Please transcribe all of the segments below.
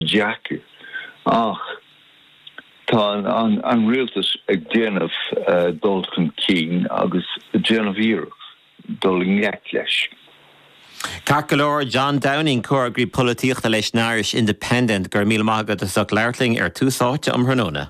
ach, ach tá an rialtas ag déanamh dul chun cinn agus ag déanamh iarracht dul i ngleic leis. Ceart go leor, John Downing, Comhfhreagraí Polaitíochta leis an Irish Independent, go raibh míle maith agat as ucht labhairt linn ar Tús Áite um thráthnóna.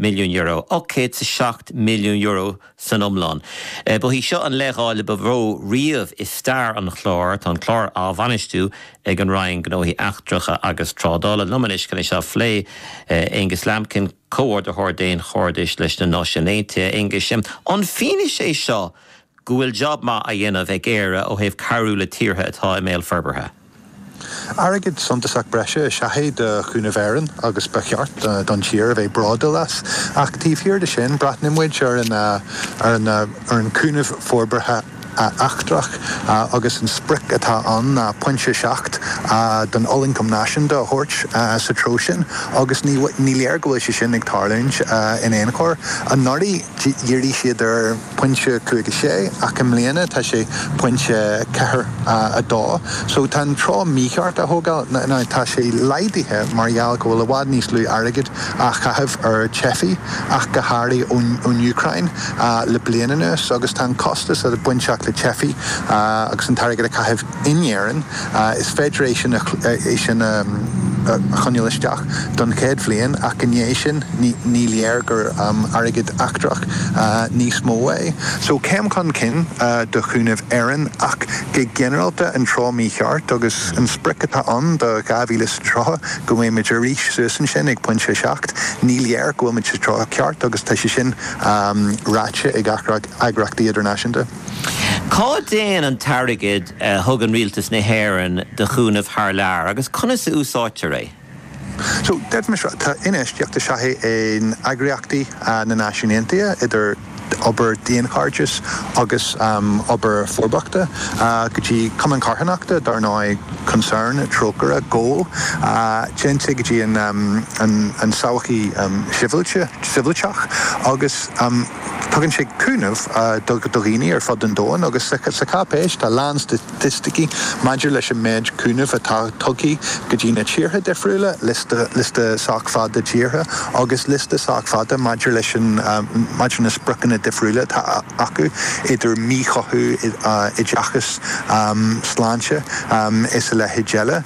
milliún euro, 807 milliún euro san iomlán. Ba í seo an leithdháileadh ba mhó riamh i stair an chláir. Tá an clár á bhainistiú ag an Roinn Gnóthaí Eachtracha agus Trádála. liom anois chun é seo a phlé. Aengus Lambkin, Comhordaitheoir Daonchairdis leis na Náisiúin Aontaithe. Aengus, An fianaise é seo go bhfuil job maith á dhéanamh ag Éire ó thaobh cabhrú le tíortha atá i mbéal forbartha. Airgead suntasach breise is ea é do Chúnamh Éireann agus ba cheart don tír a bheith bródúil as. Ach taobh thiar de sin, breathnaíonn muid ar ar an gcúnamh forbartha eachtrach agus an sprioc atá ann ná pointe 7 den ollioncam náisiúnta a thabhairt sa treo sin agus ní léir go bhfuil sé sin ag tarlúint in aon chor. Anuraidh dhírigh siad ar. pointe cúig a sé, ach i mbliana tá sé pointe ceathair a dó. So tá an treo mícheart á thógáil. Now tá sé laghdaithe mar gheall go bhfuil i bhfad níos lú airgid á chaitheamh ar theifigh ach go háirithe ón Úcráin le bliain anuas agus tá an costas bainteach le teifigh agus an t-airgead a chaitheamh In Éirinn, is féidir é sin é sin a choinneáil isteach don chéad bhliain, ach i ndiaidh sin, ní léir gur airgead eachtrach níos mó é. So, céim chun cinn do Chúnamh Éireann, ach go ginearálta, an treo mícheart, agus an sprioc atá ann do 2030, go mbeadh muid arís suas ansin ag pointe a seacht, ní léir go bhfuil muid sa treo ceart, agus tá sé sin ráite ag eagr eagraíochtaí idirnáisiúnta. Cá dtéann an t-airgead a thugann rialtas na hÉireann do chúnamh thar lear agus conas a úsáidtear é? So, deirfimis, tá infheistíocht is ea é in eagraíochtaí na Náisiún Aontaithe, idir obair daonchairdis agus obair forbartha, go dtí cumainn charthanachta, dar ndóigh, Concern, Trócaire, Goal, téann sé go dtí an tsochaí shibhialta, shibhialtach, agus. Tugann sé cúnamh do dhaoine ar fud an domhan agus sa cháipéis tá a lán staitisticí maidir leis an méid cúnaimh atá tugtha go dtí na tíortha difriúla, lio liosta sách fada tíortha agus liosta sách fada maidir leis, maidir leis na spriocanna difriúla atá acu, idir míchothú, oideachas, sláinte is a leithéid eile.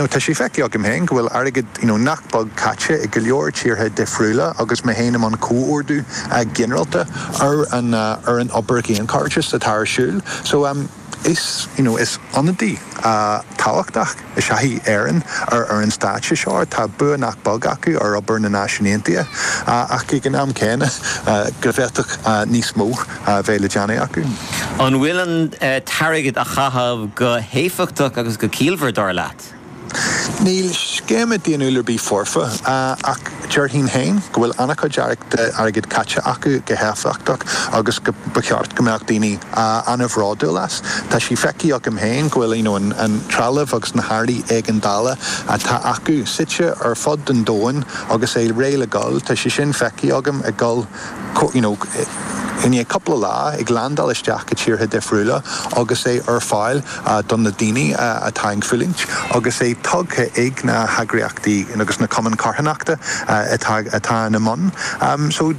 Tá sé feicthe agam féin go bhfuil airgead. you know nach beag caite acu i go leor tíortha difriúla agus mé féin i mbun comhordú ginearálta ar an ar an obair dhaonchairdis atá ar siúl so um is you know is ionadaí tábhachtach is ea í Éirinn ar ar an stáitse seo tá bua nach beag acu ar obair na Náisiún Aontaithe ach ag an am céanna go bhféadfadh níos mó a bheith le déanamh acu. An bhfuil an t-airgead á chaitheamh go héifeachtach agus go ciallmhar, dar leat? Níl scéime daonnúil ar bith foirfe, ach déarfainn féin go bhfuil an-chuid dearcadh airgid caite acu go héifeachtach agus go mba cheart go mbeadh daoine an-bhródúil as. Tá sé feicthe agam féin go bhfuil an trealamh agus na hearraí éigeandála atá acu suite ar fud an domhain agus é réidh le dul. Tá sé sin feicthe agam ag dul. you know, i ndiaidh cúpla lá, ag leaindeáil isteach go tíortha difriúla agus é ar fáil do na daoine atá ag fulaingt agus é tugtha ag na heagraíochtaí agus na cumainn carthanachta atá ina mbun. So,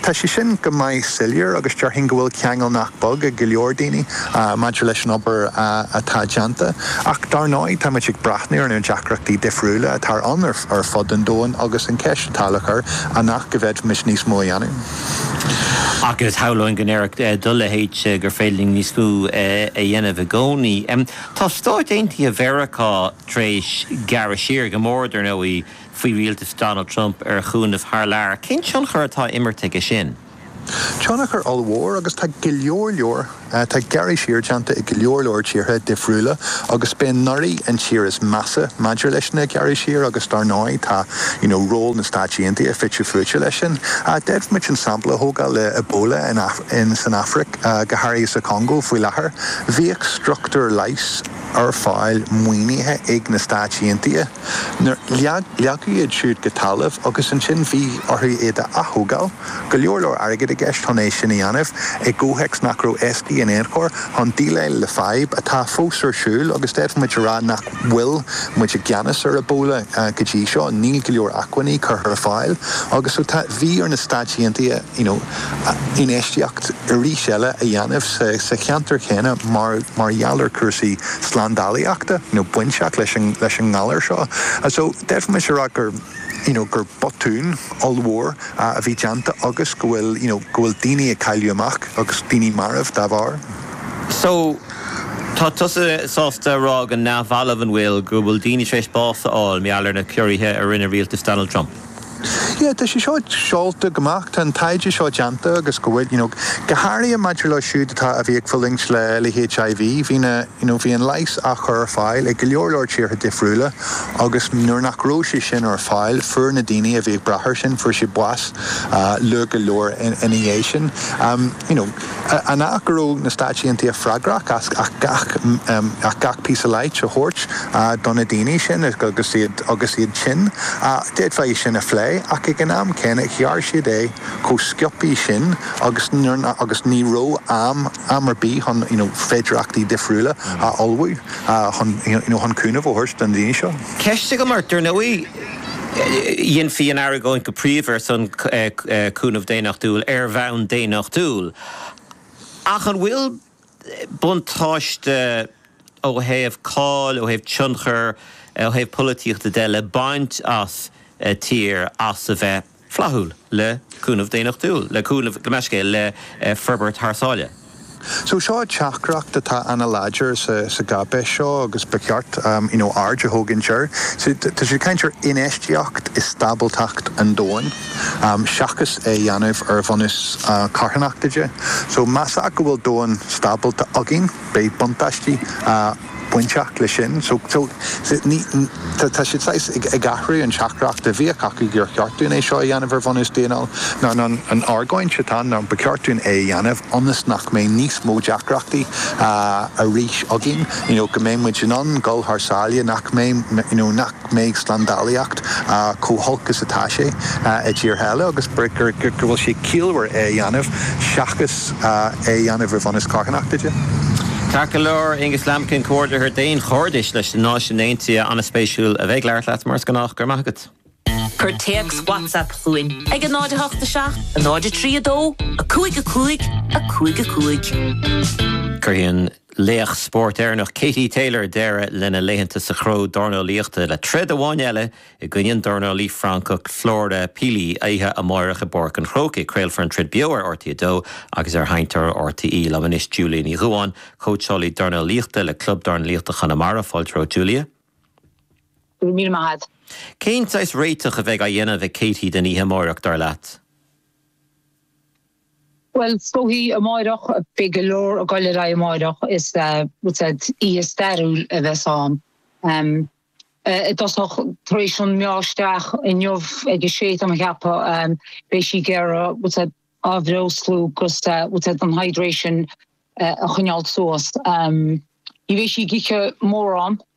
tá sé sin go maith soiléir agus déarfainn go bhfuil ceangal nach beag ag go leor daoine maidir leis an obair atá déanta ach dar ndóigh, táimid ag breathnú ar na deacrachtaí difriúla atá ann ar fud an domhain agus an cheist. nach bhféadfaimis níos mó a dhéanamh? Agus shamhlóinn go ndéarfadh do leithéid gur féidir linn níos mó a dhéanamh i gcónaí. Tá Stáit Aontaithe Mheiriceá tar éis gearradh siar, go mór, dar ndóigh, faoi rialtas Donald Trump ar chúnamh thar lear. Cén tionchar atá á imirt aige sin? Tionchar ollmhór, agus tá go leor leor, tá gearradh siar déanta i go leor leor tíortha difriúla agus b'fhéidir nach í an tír is measa maidir leis na gearradh siar agus dar ndóigh tá you know ról na Stáit Aontaithe fite fuaite leis sin. D'fhéadfadh muid an sampla a thógáil le Ebola in san Afraic, go háirithe sa Congo faoi láthair. Bhíodh struchtúir leighis ar fáil maoinithe ag na Stáit Aontaithe nuair, leagadh iad siúd go talamh agus ansin bhí orthu iad a aththógáil. go leor leor airgid i gceist chun é sin a dhéanamh, i gcomhthéacs nach raibh éasca in aon chor chun déileáil le fadhb atá fós ar siúl agus d'fhéadfadh muid a rá nach bhfuil muid i gceannas ar Ebola go dtí seo, níl go leor acmhainní curtha ar fáil agus so tá, bhí ar na Stáit Aontaithe you know infheistíocht arís eile a dhéanamh sa cheantar chéanna mar mar gheall ar chúrsaí slándálaíochta you know bainteach leis an leis an ngalar seo. So d'fhéadfadh muid a rá gur. you know gur botún ollmhór a bhí déanta agus go bhfuil you know go bhfuil daoine ag cailleadh amach agus daoine marbh dá bharr. So, tá tusa sásta a rá go neamhbhalbh, an bhfuil, go bhfuil daoine tar éis bás a fháil mar gheall ar na ciorruithe a rinne rialtas Donald Trump? Yeah, tá sé seo scaoilte amach, tá an taighde seo déanta agus go bhfuil, you know go háirithe maidir leo siúd atá, a bhí ag fulaingt le le HIV, bhí na, You know, bhí an leigheas á chur ar fáil ag go leor leor tíortha difriúla agus nuair nach raibh sé sin ar fáil, fuair na daoine a bhí ag brath air sin, fuair siad bás luath go leor ina dhiaidh sin. You know, an ea go raibh na Stáit Aontaithe freagrach as gach píosa leighis a thabhairt do na daoine sin agus iad tinn? D'fhéadfá é sin a phlé ach ag an am céanna, ghearr siad é chomh sciobthaí sin agus ní raibh am, am ar bith chun you know féidireachtaí difriúla a ullmhú chun you know chun cúnamh a thabhairt do na daoine seo. Ceist agam ort, dar ndóigh dhéanfaí an argóint go príomha ar son cúnamh daonnachtúil ar bhonn daonnachtúil, ach an bhfuil buntáiste ó thaobh cáil, ó thaobh tionchair, ó thaobh polaitíochta de le baint as tír as a bheith. flaithiúil, le cúnamh daonnachtúil, le cúnamh go bunúsach le forbairt thar sáile. So seo teachtaireacht atá ana láidir sa gcáipéis seo agus ba cheart you know aird a thógaint air. So tá siad ag caint ar infheistíocht i stábaltacht an domhain seachas é a dhéanamh ar bhunús carthanachta de. So más ea go bhfuil domhan stábalta againn beidh buntáistí bainteach leis sin. So so ní tá tá siad saghas ag ag athrú an teachtaireacht a bhíodh acu gur cheart dúinn é seo a dhéanamh ar bhunús daonnúil nó nó an argóint atá ann ná ba cheart dúinn é a dhéanamh ionas nach mbeidh níos mó deacrachtaí arís againn you know go mbeidh muid in ann dul thar sáile nach mbeidh you know nach mbeidh slándálaíocht chomh holc is atá sé i dtíortha eile agus go bhfuil sé ciallmhar é a dhéanamh seachas é a dhéanamh ar bhunús carthanachta de. Ceart go leor, Angus Lambkin, Comhordaitheoir Daonchairdis leis na Náisiúin Aontaithe, an-spéisiúil a bheith ag labhairt leat mar is gnách, go raibh maith agat. Cuir téacs WhatsApp chugainn ag 0 8 7 0 3 2 5 5 5 5. Cuirfidh an. Laoch spóirt Éireannach Katie Taylor deireadh lena laethanta sa chró dornálaíochta le troid amháin eile i gcoinne an dornálaí Francach Flora Pili oíche amáireach i bPáirc an Chrócaigh. Craolfar an troid beo ar RTÉ 2 agus ar sheinnteoir RTÉ. Liom anois, Julia Ní Dhubháin, cóitseálaí dornálaíochta le Club Dornálaíochta Chonamara. Fáilte romhat, Julia. Go raibh míle maith agat. Cén saghas réiteach a bheidh á dhéanamh ag Katie don oíche amáireach, dar leat? Bhuel, is dóigh amáireach, beidh go leor ag goil ar aghaidh amáireach, is oíche stairiúil a bheas ann. I dtosach, tar éis an meá isteach inniu ag a sé, tá mé a cheapadh, beidh sí ag athbhreoslú agus an hydration a choinneáilt suas. Ní bheidh sí ag ithe mórán.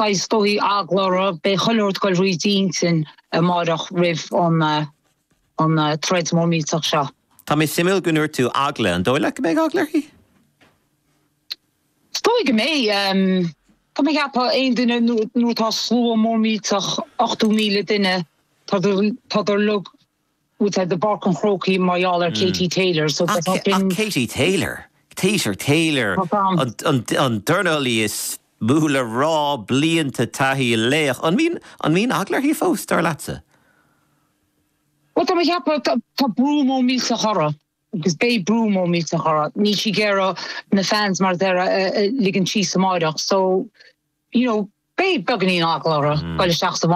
Beidh sórt eagla uirthi, beidh chuile shórt goil thríd d'intinn amáireach roimh an troid mhór millteach seo. Tá sé suimiúil go ndúirt tú eagla, an dóigh leat go mbeidh eagla uirthi? Is dóigh go mbeidh. Tá mé ag ceapadh, aon duine, nuair atá slua mór millteach, 80,000 duine, tá siad ar fad. i bPáirc an Chrócaigh mar gheall ar Katie Taylor. So tá sin. Ach Katie Taylor? Katie Taylor, an dornálaí is mó le rá, blianta taithí, laoch. An mbíonn eagla uirthi fós, dar leatsa? Bhuel, tá mé ag ceapadh, tá brú mór millteach uirthi, agus beidh brú mór millteach uirthi. Níl sí ag iarraidh na fans mar a déarfá a ligean síos amáireach. So, you know, beidh beagainín eagla uirthi dul isteach sa.